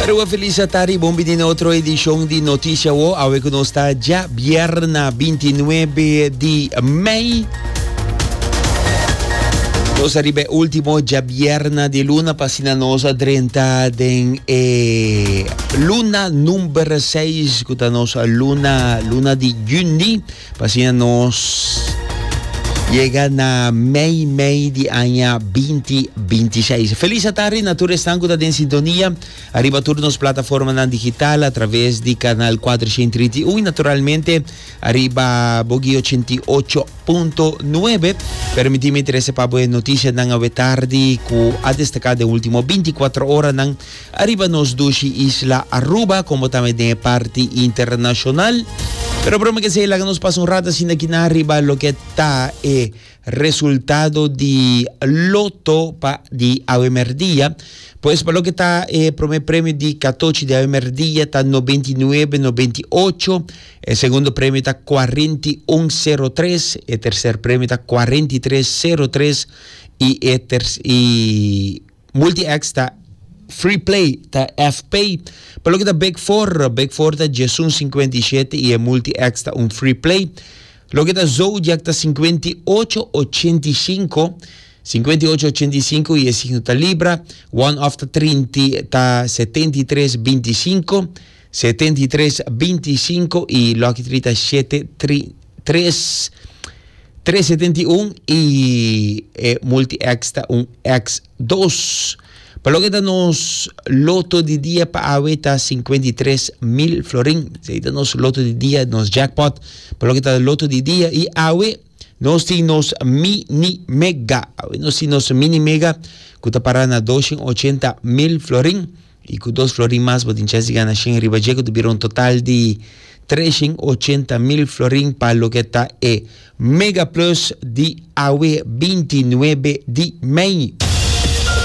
Rua Felicia Tari, bon bini na otro edishon di Notisha Wo. Awe ku nos ta dja bierna 29 di mei. Nos ariba e ultimo dja bierna di luna pa asina nos a drenta den e luna number 6 ku ta nos luna luna di juni. Pasobra nos yega na mei mei di aña binti binti seis. Felis atardi na tur esnan ku ta den sintonia ariba tur nos plataformanan digital atraves di kanal kuatrocientos trinta y uno i naturalmente ariba Bogey ochenta y ocho punto nuebe. Permití mi trese pa bo e notisianan awe tardi ku a destaká den último binti kuatro oranan. Ariba nos dushi isla Aruba como tambe den e parti internacional. Pero broma que esey laga nos pasa un rato asina aquí na riba loke ta e resultado di loto pa di awe merdia. Pues pa loke ta e prome premio di katochi di awe merdia ta noventa i nuebe noventa i ocho, e segundo premio ta cuarenta i un sero tres, e tercer premio ta cuarenta i tres sero tres y e ter y Multi-X ta Free Play, ta F-Pay. Pa loke ta Big Four, Big Four ta Jesus un sinkuenta i shete i e Multi-X ta un Free Play. Loke ta Zodiac ta sinkuenta i ocho ochenta i sinku, sinkuenta i ocho ochenta i sinku i e signo ta Libra. One-Off ta trinta ta setenta i tres binti sinku. Setenta i tres, binti i sinku i lòki trita i shete, tri, tres, tres setenta i un i e multi-X ta un X dos. Pa loke ta nos loto di dia pa awe ta sinkuenta i tres mil florin. Esei ta nos loto di dia, nos jackpot pa loke ta loto di dia. I awe nos tin nos Mini Mega. Awe nos tin nos Mini Mega ku ta para na doshen ochenta mil florin. I ku dos florin mas bo tin chèns di gana shen riba dje, ku ta bira un total di tres shen ochenta mil florin pa loke ta e Mega Plus di awe binti nuebe di mei.